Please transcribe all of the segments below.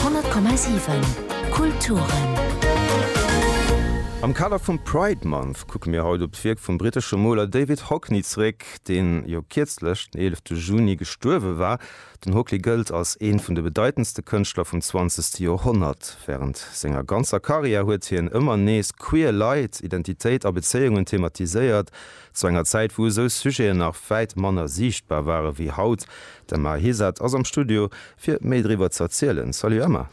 100,7 Kulturen. Am Kader vum Pride Month kucke mir haut op d'Wierk vum brittesche Moler David Hockney zréck, deen jo kierzlech, den 11 Juni, gestuerwe war. Den Hockney gëllt als ee vun de bedeitendste Kënschtler vum zwanzegste Joerhonnert. Wärend senger ganzer Karriär huet hien ëmmer nees queer Leit, Identitéit a Bezéiungen thematiséiert. Zu enger Zäit, wou esou Sujeten nach wäit manner siichtbar ware wéi haut. D'Emma Hesard ass am Studio, fir méi driwwer ze erzielen. Salut Emma!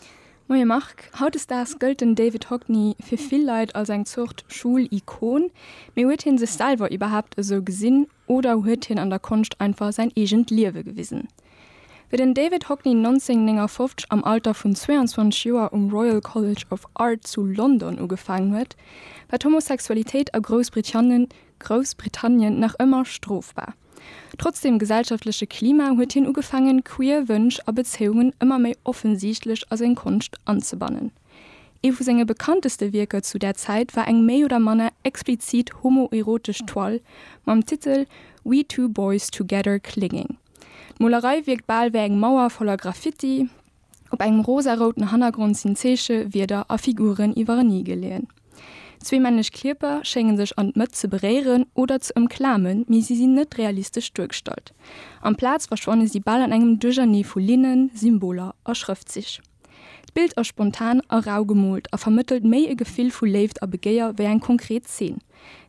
Moie Marc! Hautdesdaags gëllt den David Hockney fir vill Leit als eng Zort Schoul-Ikon. Mee huet hie sech selwer iwwerhaapt esou gesinn, oder huet hien an der Konscht einfach säin eegent Liewe gewisen? Wéi den David Hockney 1959 am Alter vun 22 Joer um Royal College of Art zu London ugefaangen huet, war d'Homosexualitéit a Groussbritannien nach ëmmer strofbar. Trotz dem gesellschaftleche Klima huet hien ugefaangen, queer Wënsch a Bezéiungen ëmmer méi offensichtlech a seng Konscht anzebannen. Ee vu senge bekannteste Wierker zu där Zäit war eng méi oder manner explizit homoerotesch Toile mam Titel We Two Boys Together Clinging. D'Molerei wierkt bal wéi eng Mauer voller Graffiti, op engem rosarouten Hannergrond sinn Zeeche, Wierder a Figuren iwwereni geleeën. Zwee männlech Kierper schénge sech an d'Mëtt ze beréieren oder ze ëmklamen, mee si sinn net realistesch duergestallt. Amplaz verschwanne si bal an engem Duerchernee vu Linnen, Symboler a Schrëftzich. D'Bild ass spontan a rau gemoolt a vermëttelt méi e Gefill vu Léift a Begéier wéi eng konkret Zeen.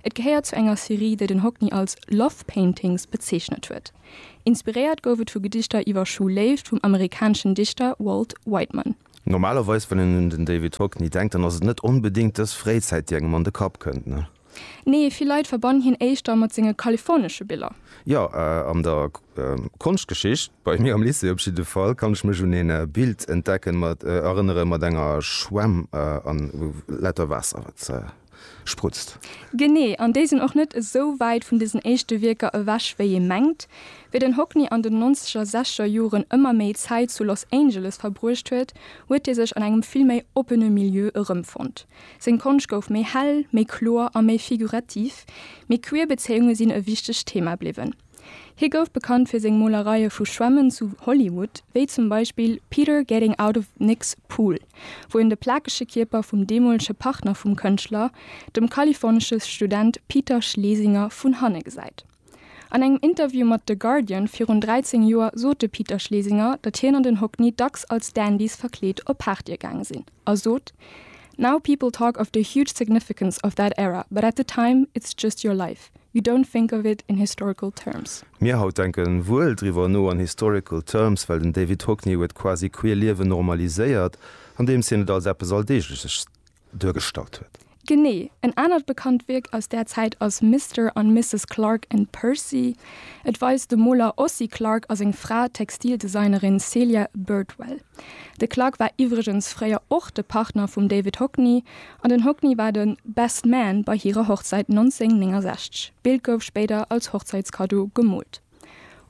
Et gehéiert zu enger Serie, déi den Hockney als Love Paintings bezeechnet huet. Inspiréiert gouf et vu Gedichter iwwer schwul Léift vum amerikaneschen Dichter Walt Whiteman. Normalerweis, wann een un den David Hockney denkt, dann ass et net onbedéngt dës Fréizäit, déi engem an de Kapp kënnt, ne? Nee, vill Leit verbannen hien éischter mat senge kalifornesche Biller. Jo, an der Konschtgeschicht, bei mir am Lycée op jidde Fall, kann ech mech un een Bild entdecken mat, erënneren, mat enger Schwämm an wou lauter Waasser wat sprutzt. Genee, an déi sinn och net esou wäit vun desen éischte Wierker ewech wéi ee mengt. Wéi den Hockney an den nonzeger, sechzeger Joren ëmmer méi Zäit zu Los Angeles verbruecht huet, huet hie sech an engem vill méi oppene Milieu erëmfonnt. Seng Konscht gouf méi hell, méi kloer a méi figurativ, mee queer Bezéiunge sinn e wichtegt Thema bliwwen. Hie gouf bekannt fir seng Molereie vu Schwämmen zu Hollywood, wéi zum Beispill Peter Getting Out of Nick's Pool, wou en de plakege Kierper vum deemolege Partner vum Kënschtler, dem kalifornesche Student Peter Schlesinger, vun hanne gesäit. An engem Interview mat The Guardian virun 13 Joer sot de Peter Schlesinger, datt hien an den Hockney dacks als Dandys verkleet op Partye gaange sinn a sot, Now people talk of the huge significance of that era, but at the time it's just your life, you don't think of it in historical terms. Mir haut denke wuel driwwer no an historical terms, well den David Hockney huet quasi queer Liewen normaliséiert, andeems hien et als eppes Alldeegleches duergestallt huet. Genee. En anert bekannt Wierk aus där Zäit ass Mister an Misses Clark and Percy. Et weist de Moler Ossie Clark a seng Fra, d'Textildesignerin Celia Birdwell. De Clark war iwwregens fréier och de Partner vum David Hockney an den Hockney war de Best Man bei hirer Hochzäit 1969. D'Bild gouf spéider als Hochzäitskaddo gemoolt.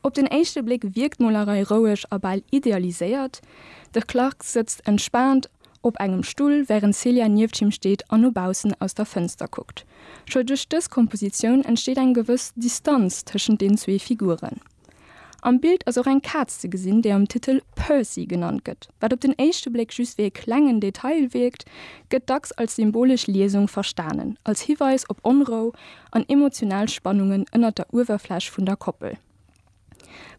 Op den éischte Bléck wierkt d'Molerei roueg a bal idealiséiert, de Clark sëtzt entspaant op engem Stull, wärend d'Celia nieft him steet an no baussen aus der Fënster kuckt. Scho duerch dës Kompositioun entsteet eng gewëss Distanz tëschent den zwee Figuren. Am Bild ass och eng Kaz ze gesinn, déi am Titel Percy genannt gëtt. Wat op den éischte Bléck just wéi e klengen Detail wierkt, gëtt dacks als symbolesch Liesung verstanen, als Hiweis op Onrou an emotional Spannungen ënnert der Uewerfläch vun der Koppel.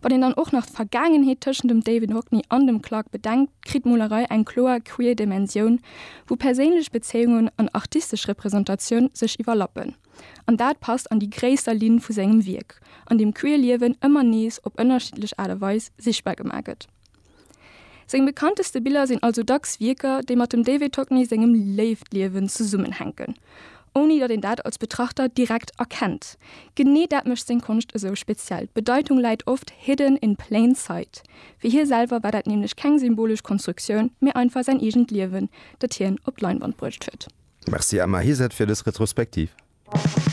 Wann een dann och nach d'Vergaangenheet tëschent dem David Hockney an dem Clark bedenkt, kritt d'Molerei eng kloer queer Dimensioun, wou perséinlech Bezéiungen an artistesch Representatioun sech iwwerlappen. An dat passt an déi gréisser Linn vu sengem Wierk, an deem queer Liewen ëmmer nees op ënnerschiddlech Aart a Weis sichtbar gemaach gëtt. Seng bekannteste Biller sinn also dacks Wierker, déi mat dem David Hockney sengem Léiftliewen zesummenhänken, ouni datt een dat als Betrachter direkt erkennt. Genee dat mécht seng Konscht esou speziell, d'Bedeitung läit oft hidden in plain sight. Fir hie selwer war dat nämlech keng symbolesch Konstruktioun, mee einfach säin eegent Liewen, dat hien op d'Leinwand bruecht huet. Merci Emma Heset fir dës Retrospektiv.